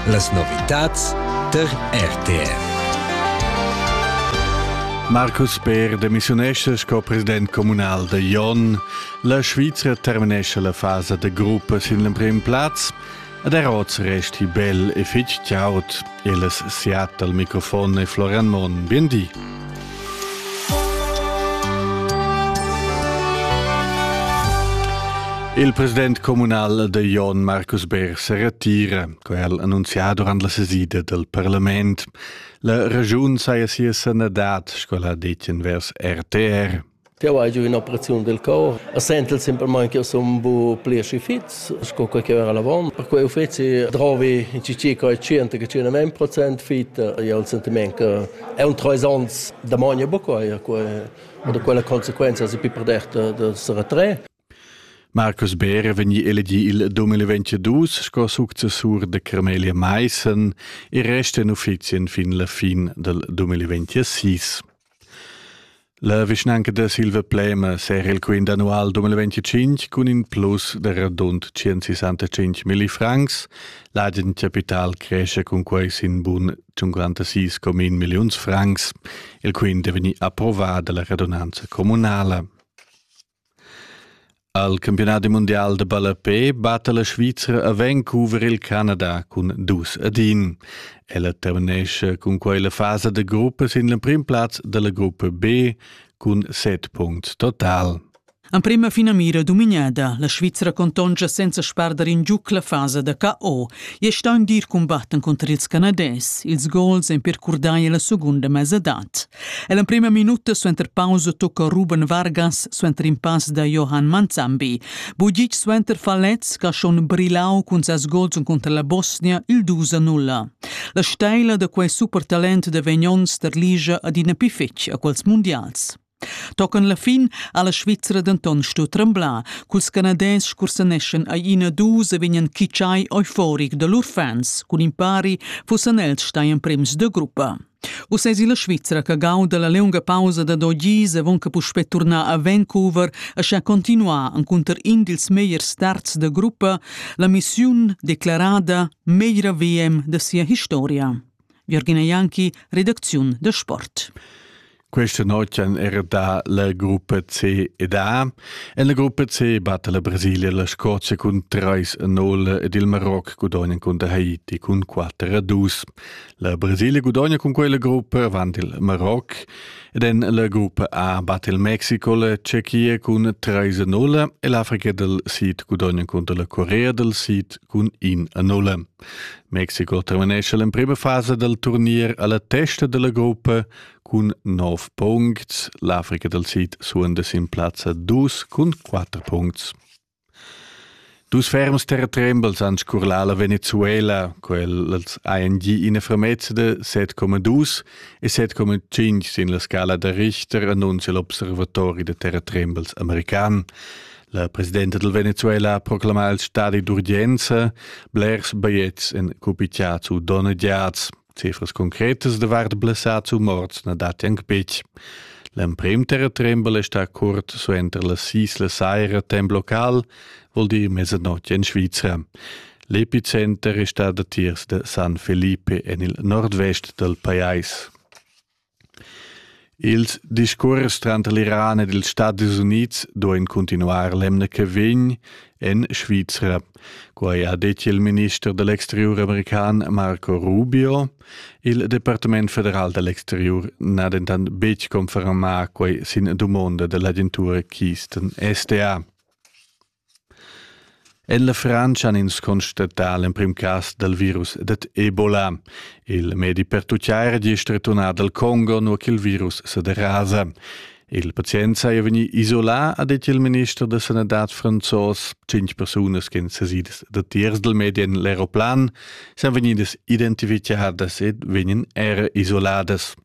Las novitads der RTR. Marcus Beer demissiunesce sco president communal da Jon. La Svizra terminesce la fasa da gruppa sin l'emprim plaz ed er oz resti bel e fitg chaud. El es siat al microfon e Florian Monn. Biendi. Il president comunal de Jon Markus Beer se retira, co el annunzià durant la sesida del parlament. La regiun saja sia sanadad, sco la detien vers RTR. Jau hai giu in'operaziun del cor e sentel semplamain ch'jeu sun bu pli aschi fits sco quei che era avon. Per quei uffeci drovi in cici quei 100-100% fit. E ho il sentiment che è un treis onns da magna buca quei. Oder quella consequenza si più per dert da se retrair. Marcus Beer è vegnì elegì il 2022 sco successur da Carmelia Maissen e resta en uffizien fin la fin dal 2026. La vischnanca da Silva Plema serra il quint annual 2025 cun in plus da radund 165 milli francs. L'agen capital cresce cun quai sin bun 56,1 milliuns francs. Il quint è vegnì approvà dalla radunanza communala. Al campiunadi mundial da ballapè batta la Svizra a Vancouver il Canada cun dus ad in. Ella terminescha cun quai la fasa da gruppa sin l'emprim plaz da la gruppa B cun set punts total. Emprema finamira dominada, la Svizra contonscha senza spardar in giuc la fasa da KO e sta in dir cumbatten conter ils Canadès. Ils gols èn per curdai la segunda mesadad. E l'emprima minuta suenter pausa tocca Ruben Vargas suenter in pass da Johan Manzambi. Bugic suenter Falez che ha schon brillau cun ses gols cunter la Bosnia il 2 0. La steila da quei supertalent da Vegnon sterligia adina pli fetg a quels mondials. Tocan la fin ha la Svizra denton stu tremblar, culs canadès scursaneschan ai ina dus e vegnan kitschai euforic da lur fans, cun impari fussan els stai emprems de gruppa. Uss esi la Svizra che gauda la liunga pausa da do gis avon che puspei turnar a Vancouver e sha continuar encunter in dils megliers starts da gruppa, la missiun declarada meglra VM da sia historia. Virgina Janki, redacziun da sport. Questa notg era da la gruppa C ed A. En la gruppa C batte la Brasilia la Scozia cun 3-0 ed il Maroc gudogna cun der Haiti cun 4-2. La Brasilia gudogna cun quella gruppa avanti il Maroc ed en la gruppa A batte il Mexico la Cecchia cun 3-0 e l'Africa del Sid gudogna contro la Corea del Sid cun 1-0. Mexico terminesce l'emprima fase del turnier alla testa della gruppa Cun nov puncts l'Africa dal Sid suonda sin plazza dus cun quatter puncts. Dus ferms terratrembels han scurlà la Venezuela, quels ANG ina fermezza de 7,2 e 7,5 sin la scala da Richter annuncia l'observatori de terratrembels american. La presidenta del Venezuela proclama il stadi d'urgenza blers bigliettes en cupitiazu donadiats. Cifras concretas davart blessads u morts na datti anc betg. L'emprim terratrembel è stà curt suenter la Sisla Saira temp local, vul dir mezzanotte in Svizra. L'epicenter è stà datiers da San Felipe en il nordvest dal pajais. Ils discuors tranter l'Iran ed ils Stadis Unids duein cuntinuar l'emna che vegn en Svizra. Quei ha detg il minister da l'exteriur american Marco Rubio. Il Departament federal da l'exteriur n'ha dentant betg confermà quei sin dumonda dell'agentura Keystone SDA. En la Frantscha han ins constatà l'emprim cas dal virus dad Ebola. Il medi pertutgà era gist returnà dal Congo, nua ch'il virus sa derasa. Il pazient saja vegnì isolà, ha detg il minister da sanadad franzos. Cinc persunas ch'en sesidas datiers dal medi en l'aeroplan san vegnidas identificadas ed vegnan era isoladas.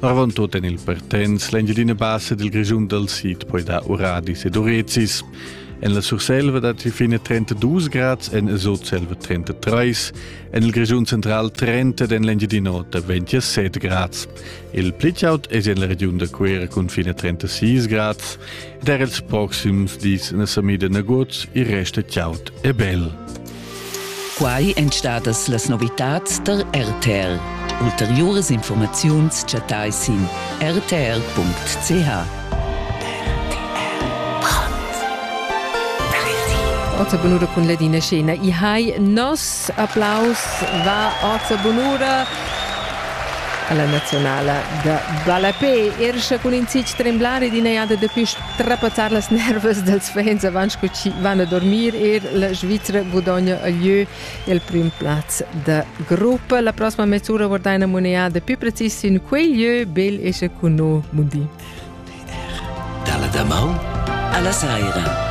Arvon tut en il Pertens, l'Engiadina Bassa dil Grischun dal Sid poi dar uradis ed urezis. En la Surselva datti fine 32 grads, en Sutselva 33, en il Grischun central 30 ed en l'Engiadin'Ota 27 grads. Il pli chaud è en la regiun da Cuera cun fine 36 grads ed er ils proxims dis na sa mida nagut, il resto chaud e bel. Quai èn stadas las novitads tar RTL. Ulteriuras informaziuns chattai sin rtl.ch. Orza Bonura cun Ladina Scena. I hai nos applaus va Orza Bonura alla nazionala da ballapé. Erscha cun in zic tremblare d'ina jada da quest Trapazzar las nervas dels fans avant che chi van a dormir er la Svizra gudogna a lieu il prim plaz da gruppa. La prossima mezz'ura guardai una moneda più precisa in quel lieu bel esce con noi, Mundi. Dalla damaun alla saira.